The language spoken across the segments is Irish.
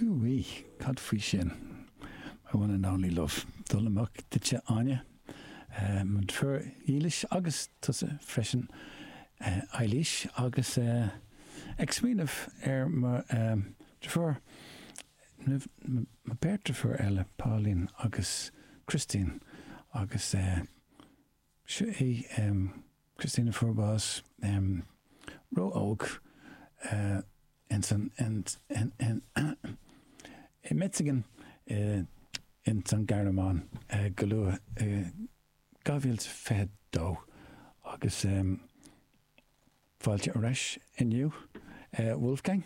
Úi, cad faoi sin? My one and only love. Dul amach duit a Áine, mo dheirfiúr dhílis agus tusa freisin a Eilís agus ag smaoineamh ar mo dheirfiúr, mo beirt deirfiúr eile Pauline agus Christine agus eh, Seo é Christine Forbes, ró-óg, i Metzingen ins an Ghearmáin go luath i 2022 agus fáilte ar ais inniu Wolfgang,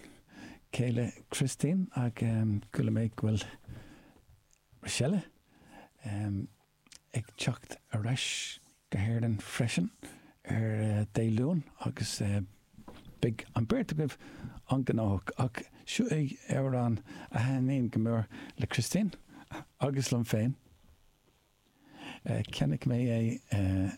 céile Christine ach chuala mé go bhfuil Rochelle ag teacht ar ais go hÉirinn freisin ar Dé Luain agus beidh an beirt agaibh an-ghnóthach. Ach seo é amhrán a thaitníonn go mór le Christine agus liom féin. Cheannaigh mé é.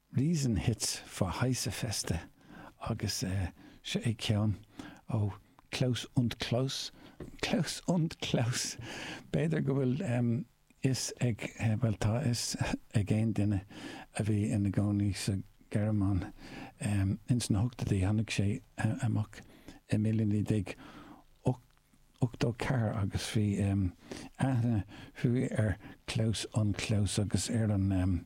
Riesen Hits für heiße Feste agus seo é ceann ó Klaus und Klaus, Klaus und Klaus! B'fhéidir go bhfuil fhios ag, bhuel tá fhios ag aon duine a bhí ina gcónaí sa Ghearmáin ins na hochtóidí, tháinig sé amach i míle naoi déag ochtó ceathair agus bhí aithne ar Klaus und Klaus agus ar an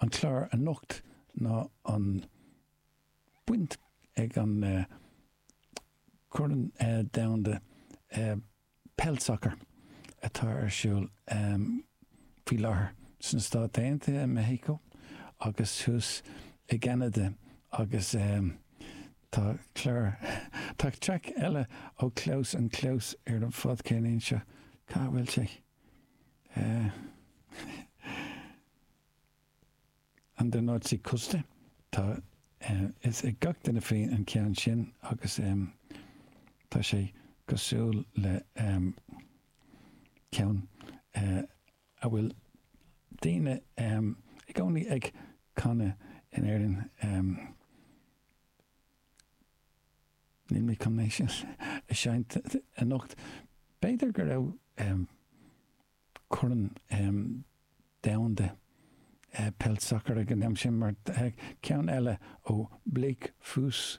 an clár anocht ná an baint ag an Corn Domhanda Peil Sacair atá ar siúl faoi láthair sna Stáit Aontaithe, i Meicsiceo agus thuas i gCeanada agus tá clár, tá traic eile ó Klaus und Klaus ar an cheann seo, cá bhfuil sé? An der Nordseeküste. Tá fhios ag gach duine faoin an ceann sin agus tá sé cosúil le ceann a bhfuil daoine i gcónaí ag canadh in Éirinn. Níl mé chun é sin a seinnt anocht. B'fhéidir go raibh Corn Domhanda Peil Sacair ag an am sin, mar ceann eile ó Bläck Fööss